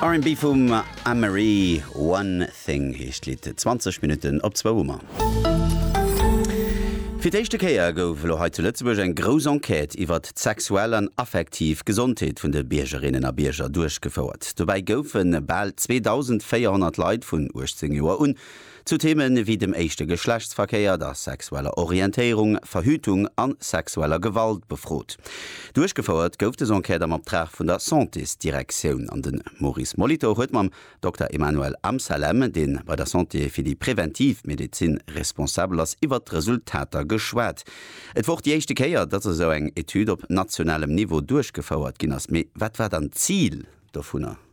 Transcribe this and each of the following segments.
R&B vum Amerie One Thing heescht d'Lidd. 20 Minutten op zwou hu mer. Fir d'éischte Kéier gouf elo hei zu Lëtzebuerg eng grouss Enquête iwwert d'sexuell an affektiv Gesondheet vun de Biergerinnen a Bierger duerchgefouert. Dobäi goufe bal 2.400 Leit vun 18 Joer un Zu Theeme wéi dem éischte Geschlechtsverkéier, der sexueller Orientéierung, Verhütung an sexueller Gewalt befrot. Duerchgefouert gouf des Enquête am Optrag vun der Santésdirektioun an den Maurice Molitor huet mam Dokter Emmanuel Amsalem, deen bei der Santé fir déi präventiv Medezin responsabel ass, iwwert d'Resultater geschwat. Et wor och déi éischte Kéier, dass esou eng Etüd op nationalem Niveau duerchgefouert ginn ass. Mee wat war dann d'Zil dovunner?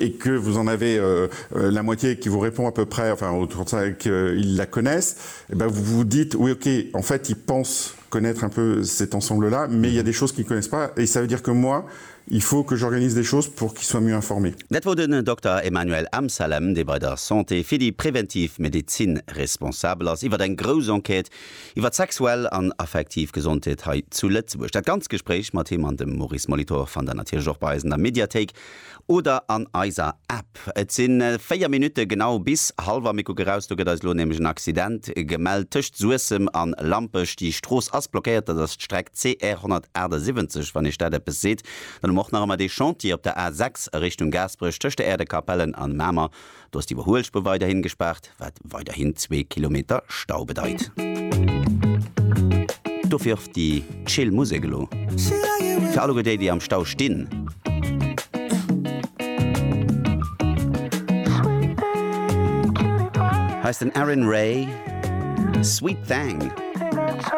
et que vous en avez la moitié qui vous répond à peu près, enfin en tout cas qu'ils la connaissent, eh bien vous vous dites, oui ok, en fait ils pensent connaître un peu cet ensemble-là, mais il y a des choses qu'ils ne connaissent pas, et ça veut dire que moi, il faut que j'organise des choses pour qu'ils soient mieux informés. Dat wor den Dokter Emmanuel Amsalem, dee bei der Santé fir déi präventiv Medezin responsabel ass, iwwer eng grouss Enquête iwwer d'sexuell an affektiv Gesondheet hei zu Lëtzebuerg. Dat ganz Gespréich mat him an dem Maurice Molitor fannt der natierlech och bei eis an der Mediathéik. Oder an eiser App. Et sinn 4 Minutte genau bis Halver. Mir kucken raus, do gëtt eis elo nämlech en Accident gemellt tëscht Suessem an Lampech. Déi Strooss ass blockéiert, dat ass d'Streck CR 178. Wann iech dat eppes seet, dann hu mer och nach ëmmer dee Chantier op der A 6 a Richtung Gaasperech tëscht der Äerdekapellen an Mamer. Do ass d'Iwwerhuelspur weiderhin gespaart, wat weiderhin zwee Kilometer Stau bedeit. Dofir och déi chill Musek elo fir alleguer déi, déi am Stau stinn. Hei ass den Aaron Ray, Sweet Thang.